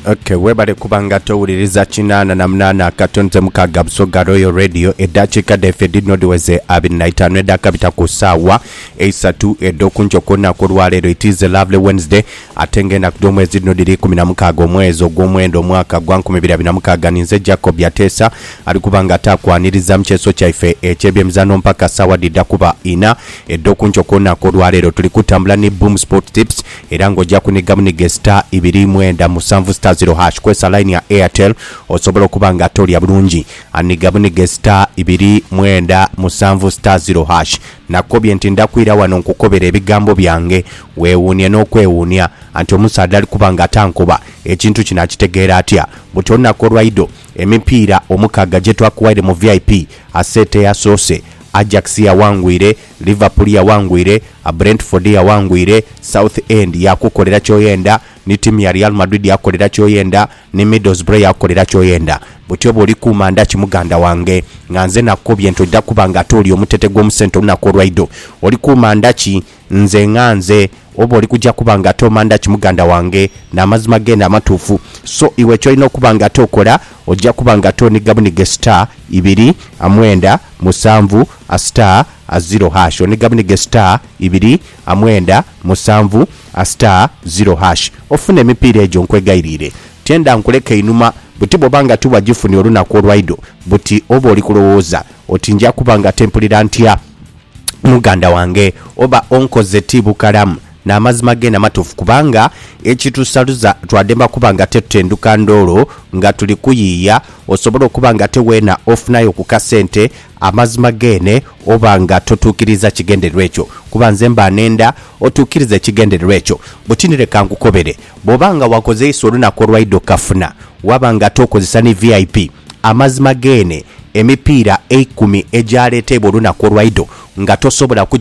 Okay, webale kuba nga towuliriza kinaana na munaana akatonze mukaaga Busoga Royal Radio eddakiika dhaife dhino dhiweze abiri na itaanu edhakabita ku ssaawa eisatu edh'okunkyo ku lunaku olwaleero it is a lovely Wednesday ate nga enaku dh'omwezi dhino dhiri ikumi na mukaaga omwezi ogw'omwenda omwaka gwa nkumi biri abiri na mukaaga ninze Jacob Yateesa ali kuba nga ataakwaniriza mu kyeso kyaife eky'ebyemizano mpaka ssaawa dhidha kuba ina edh'okunkyo ku lunaku olwaleero tuli kutambula ni Boom Sport Tips era nga oja kuniga bunige star ibiri mwenda musanvu star zero hash kwesa line ya Airtel osobola okuba nga tolya bulungi aniga bunige star ibiri mwenda musanvu star zero hash nakukobye nti ndakwira wano nkukobere ebigambo byange wewuunie nokwewuunia anti omusaadha alikuba nga atankoba ekintu kino akitegeera atya buti olunaku olwaido emipiira omukaaga jetwakuwaire mu vip aseeta eyasoose Ajax yawangwire Liverpool yaghangwire, Brentford yaghangwire, South End yakukolera kyoyenda, ni tiimu ya Real Madrid yakukolera kyoyenda, ni Middlesbrough yakukolera kyoyenda. Butyo bwoli kuuma ndhaki muganda wange? Nga nze nakukobye nti oja kuba nga ate oli omutete gw'omusente olunaku olwaidho. Oli kuuma ndhaki? Nze nga nze oba oli kuja kuba nga ate oma ndhaki muganda wange? N'amazima geene amatuufu. So iwe kyolina okuba nga ate okola, oja kuba nga ate oniga buniga e star ibiri, mwenda, musanvu a star a ziro hash one gabune ge star ibiri a mwenda musanvu a star ziro hash ofune emipiira egyo nkwegairiire tienda nkuleka einhuma buti bwoba nga tiwajifunye olunaku olwaidho buti oba oli kulowooza oti nja kuba nga tempulira ntya muganda wange oba onkoze ti bukalamu N'amazima geene amatuufu, kubanga ekitusaluza twademba kuba nga tetutenduka ndoolo nga tuli kuyiiya, osobole okuba nga ate weena ofunayo ku kasente, amazima geene oba nga totuukiriiza kigendererwa ekyo. Kuba nze mba neenda otuukirize ekigendererwa ekyo. Buti ni leka nkukobere, bw'oba nga wakozeisa olunaku olwaidha okukafuna, waba nga ate okozesa ni VIP, amazima geene emipiira eikumi egyaleeteibwa olunaku olwaidho nga tosobola kugikozesamu.